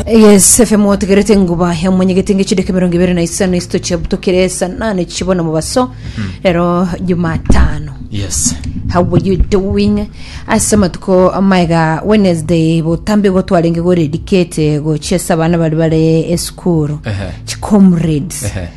Yes, FM wategerete enguba ya mwenyegete nge chideke mirongo ibere na isano isito chiabutokire saa nane chibona mobaso rero jumatano yes how were you doing ase amatuko amaega wednesday botambe igo twarenge goredikete gochia ase abana bari bare esukuru Ehe. chicomrades Ehe.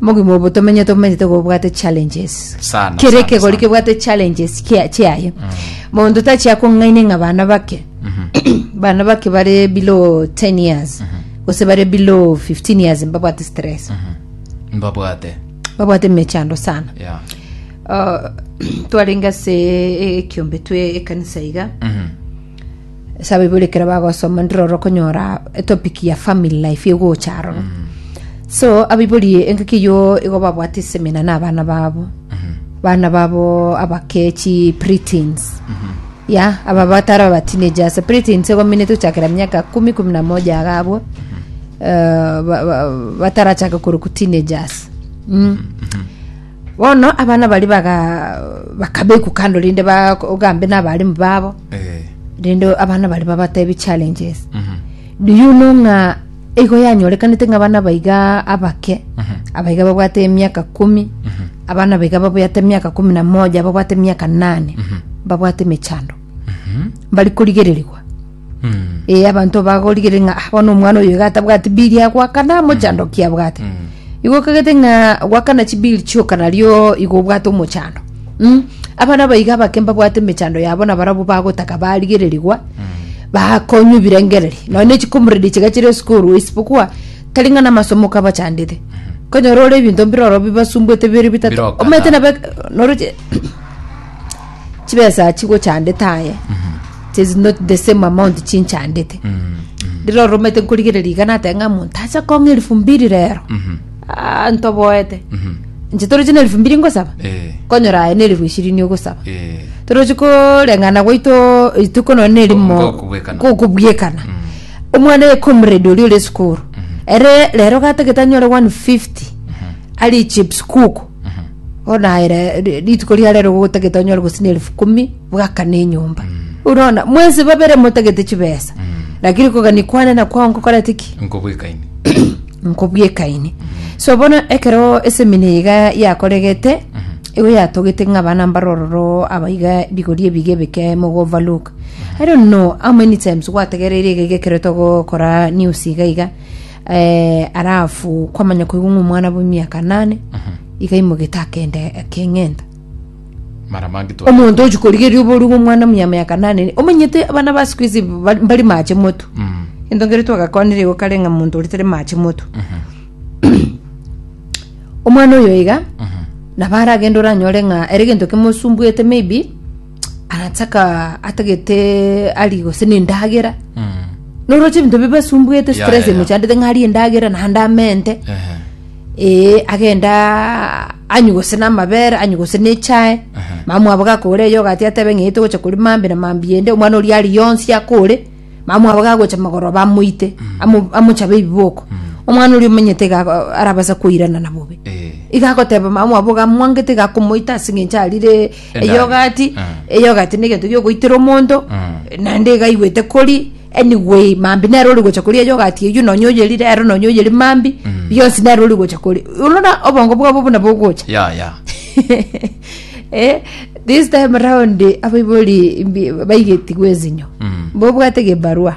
Mogima obo tomenyete omenyete gobwate challenges Sana, kere sana, ekegori sana. kebwate challenges kia- chiaye monto tachia kong'aine ng'a bana bake bana bake bare below 10 years gose bare below 15 years mbabwate stress mbabwate babwate mechando sana yeah. Uh, twarenge ase ekiombe twe ekanisa iga Mhm. Esabibu ekero bagosoma ndire oro okonyora etopic ya family life egocha aroro so abaibori engaki eyo igo babwate esemina na abana babo bana babo abakechi preteens ya aba batara aba teenagers preteens egominete gochakera miaka kumi kumi na moja iga abwo eh, ba- ba- batarachake koroku teenagers Mm. Bono abana baria baga bakabekwa kando rinde bagambe n'abarimu babo Eh. rinde abana baria babatebie challenges Mhm. do you know ng'a igo yanyorekanete ng'a abana baiga abake Mhm. abaiga babwate emiaka kumi Mhm. abana baiga babwate emiaka kumi na moja babwate emiaka nane Mhm. babwate emechando mbari korigererigwa ee abanto bagorigereria ng'a "Ah, bono omwana oyo iga atabwati bili ya goakana mochando ki abwate igo okagete ng'a goakana chibili chioka nario igo obwate omochando mm? abana aba iga abake mbabwate emechando yabo na barabwo bagotaka barigererigwa bakonywa ebirengereri nonya ne chikomorero chiga chire esukuru isipokuwa tari ng'a namasomo kabachandete konyora ore ebinto mbire ororo bibasumbuete bire bitato Birokana. omanyete nabo noroche chibesa chigochandete aye tis not the same amount chinchandete rero oromete nkorigereria iga natebe ng'a monto acha kong'a elifu mbiri rero Ah, ntoboete inche toroche na elifu mbiri ngosaba Eh. konyora aye na elifu ishirini ogosaba Eh. toroche koreng'ana gwaito rituko nonya na erimo Ngokobwekana. gokobwekana omwana ye comrade oria ore esukuru ere rero gatagete anyore 150 ari chips kuku Onaere ri- rituko ria rero gotagete onyore gose na elifu kumi bwakane enyomba orona mwensi babere motagete chibesa lakini kogania kwane na kwao nkokorete ki nkobwekaini nkobwekaini so bono ekero esemina iga yakoregete igo yatogete ng'a abana mbare ororo abaiga bigori ebiga ebike mogova look i don't know how many times gwategereire iga iga ekero togokora news iga iga Eh, arafu kwamanya koigwa ng'a omwana bwa emiaka nane iga imogete akenda akeng'enta mara mange twa omonto ochi korigeria oboruge omwana muya miaka nane omanyete abana ba siku hizi ba- bari mache moto Mm, ento ngere twagakonire igo kare ng'a omonto oria tari mache moto omwana oyo iga nabo aragenda oranyore ng'a ere egento kimosumbuete maybe arataka atagete ari gose nendagera noroche ebinto bibe asumbuete Ya, stress ya, ya. emochandete ng'a arie endagera naende amente Ehe. ee agenda anywe gose namabere anywe gose nechae Aha. mama mwabo gakore eyo ogati atebe ng'ai togocha kori mambi na mambi ende omwana oria ari yonsi akore mama mwabo gagocha magoroba amoite amo- amochabe ebiboko omwana oria omanyete iga ako- arabasa koirana na bobe Eh. iga agoteba mama mwabo iga amwangete iga akomoita ase eng'encho arire Endagera. eyogati Mm. eyogati negento giogoitera omonto Mm. naende iga aigwete kori anyway mambi nere ori gocha koria eyogati eyio nonya oyerire ero nonya oyeri mambi Mm. bionsi nere ori gocha kori orora obongo bwabo buna bogocha ya ya eh, this time round abaibori mbi- baigetigwe ezinyo Mm. bobwate gebarua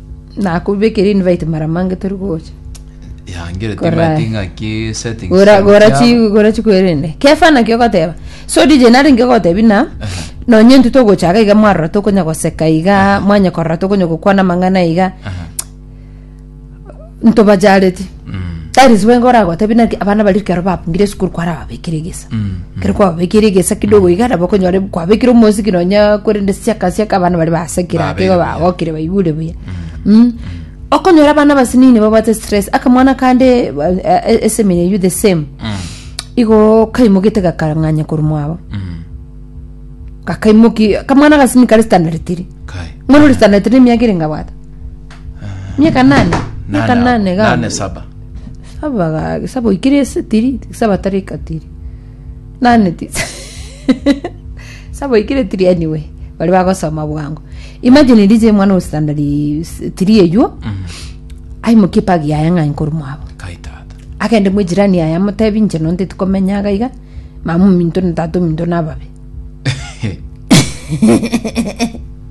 Nakobekire invite mara mange tori gocha. Yangere Korai. timati ng'aki settings. Gora gora chi Chiabo. gora chikwerende. Kefa naki ogoteba. So DJ nari ngegotebi na nonye intwe togochaka iga mwarora tokonya goseka iga mwanya korora tokonya gokwana amang'ana iga Aha. ntobajareti tari ase bwengo oragotebi naki abana baria ekero babungire esukuru kwara babekire egesa ekero kwababekire egesa kidogo iga nabo okonyora kwabekire omosiki nonya korende siaka siaka abana baria basekire ake igo Babere. bagokire baigure buya Mm. okonyora abana abasinini nibabwate stress akamwana kande ba- eh, eh, esemina eywo the same igo kaimoke gakang'anya korwa mwabo gakaimoki akamwana agasini kare standard tiri Kai. mwana ore standard tiri nemiaka ere ngabwata Miaka nane? Miaka Nane- nane ga- nane saba Saba ga- saba oikire ase tiri, saba tari katiri. Nane ti. saba oikire tiri anyway. Bari bagosoma bwango. Imagine rije mwana o standard s- tiri eyuo. Aimokie pagi yaye ng'ai nkoru mwabo. kai tata Agende mwe jirani yaye amotebi inche nonte tikomenya gaiga. Mama ominto na tata ominto nababe.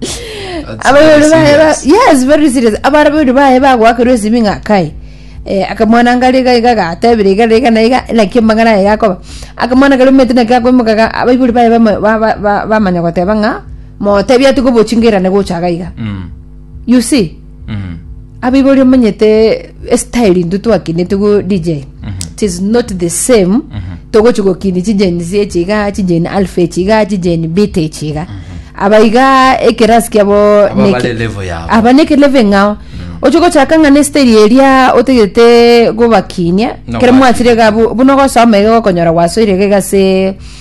That's abarori very baye ba- serious. yes very serious abarori baye bagoakerwa esimi ng'a kai Eh, akamwana ngari iga iga gatebire iga iga na iga naki amang'ana aye gakoba akamwana kari omete naki akoimokaga abaibori baye bama- ba- ba- ba- bamanya goteba ng'a motebia ati gobochingirane gochaga iga Mm. you see abaibori omanyete estyle intwe twakinete go dj tis not the same togochi gokini chijeni zi echi iga chijeni alfa echi iga chijeni bit echi iga aba iga ekerasi kiabo Aba neki- bare level yabo. aba neke level eng'ao oche gochaka ng'a nesteri eria otagete gobakinia No, kere mwachire bakinia. iga bu- buna ogosoma iga ogokonyora gwasoire iga iga ase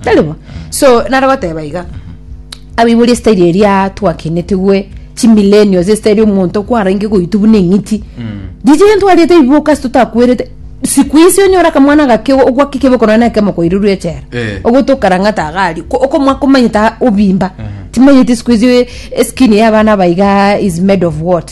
Tari bo? So, nare goteba iga, abaibori esitairi eria twakenetigwe chimilenio ase esitairi omonto kwarenge goitwa buna eng'iti riria gento ariete ebiboka ase totakwerete siku isi onyore akamwana gake ogwake ekeboko nonye na ekemo koirerwa echela Eh. ogote okarang'ata iga aria ko- okomwa komanyete obimba timanyeti siku isi eskin ya abana aba iga is made of what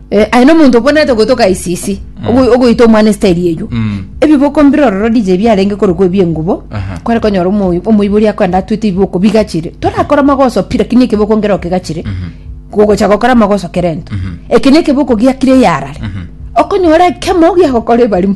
Eh, aye nomonto okwenerete gotoka isisi ogo- ogoita omwana esiteri eywo Mm. ebiboko mbire ororo dije biarenge korokwa ebiengubo Aha. kware konyora omo- omoibori akwenda atwete ibiboko bigachire torakora amagoso pi lakini ekeboko ngero kegachire gogocha gokora amagoso kerento eke nekeboko giakire yarare okonyora ekemo giagokora ebarimo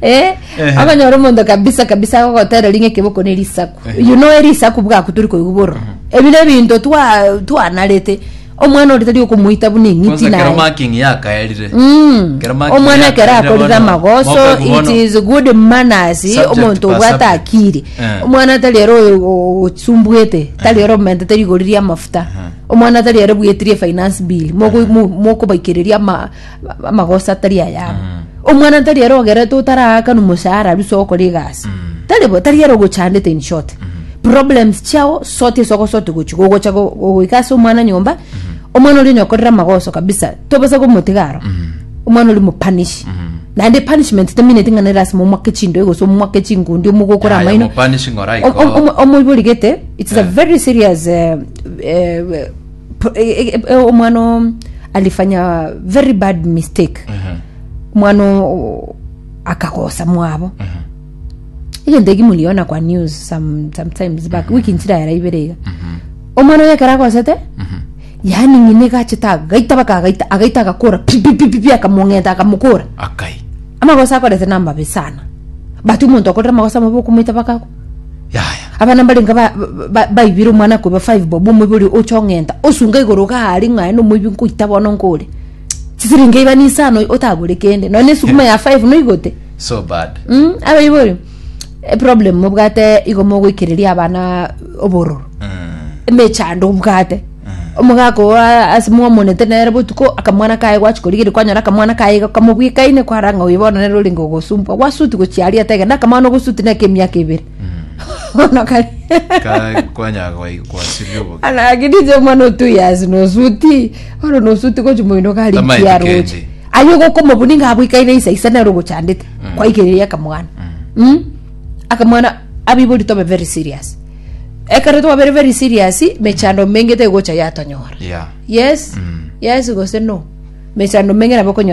Eh, Ehe. okonyora omonto kabisa kabisa agogotera ringe keboko ne risaku you know erisaku bwaku turi koigwa boro ebire ebinto twa- twanarete omwana ore tari okomoita buna eng'iti kwanza kero naye marking yakaerire Mm. Kero marking omwana yakaerire ekero akorire bono, amagoso mokwe it bono. is good manners Subject omonto per obwate subject. akiri Eh. omwana tari ere osumbuete tari ere omente tari igoririe amafuta omwana tari ere bwetirie finance bill Moko- mo- mokobaikireria ama- amagoso atari ayabo omwana tari ere ogerete otaraakana omoshahara aria ase ogokora egasi tari bo tari ere ogochandete in short problems chiao sort ase ogosort gochi gogocha go- go- goika ase omwana nyomba omwana oria onye okorire amagoso kabisa tobasa komotiga aro omwana oria omopanish naende punishment temineti ng'a nere lasima omwake chindoe gose omwake chingundi omogokore Aye, amaino omopanish ng'ora Om- om- igo. omo- omoiborigete its a very serious eh, eh, Pro- e- e- e- e- omwana o- alifanya very bad mistake Ehe. mwana o- akagosa mwabo Ehe. egento eki muriona kwa news some, sometimes back wiki nchira yara ibere iga Mhm. omwana oyo ekero agosete Mhm. yaani ng'ina egachete agaita baka agaita agaita agakora pipipipipi akamong'enta akamokora Akai. amagosa akorete namabe sana but omonto akorera amagosa amabe okomoita baka Yaya. abana mbarenga ba- ba- ba- baibire omwana koiba five bob omoibi oria ocha ong'enta osunga igoro iga are ng'a aye nomoibi nkoita bono nkore chisiringi iba nisano otagore kende nonya na esuguma ya five noigote so bad Mm, abaibo oyo eproblem mobwate igo mogoikereria abana obororo Mm. emechando obwate Omogaka oo a- ase mwamonete nere botuko, akamwana kaye gwachia korigeria kwanyora akamwana kaye iga kamobwekaine kwara ng'a oyo bono nere orenge ogosumbwa gwasuti gochia aria taiga na akamwana ogosuti neke emiaka ebere bono kari Ka- kwanyara kwai- kwasirire oboke anagidije omwana o two years nosuti bono nosuti gochia moino gari Tamaeti nkiaro kende. gochia aye ogokomobuni ng'a abwekaine isa isa nere ogochandete kwaigereria akamwana Mm. akamwana abibori tobe very serious Ekero twabere very serious, mechando menge tegocha yatonyora. Yeah. Yes, Mm. yes gose no. Mechando menge nabo okonyora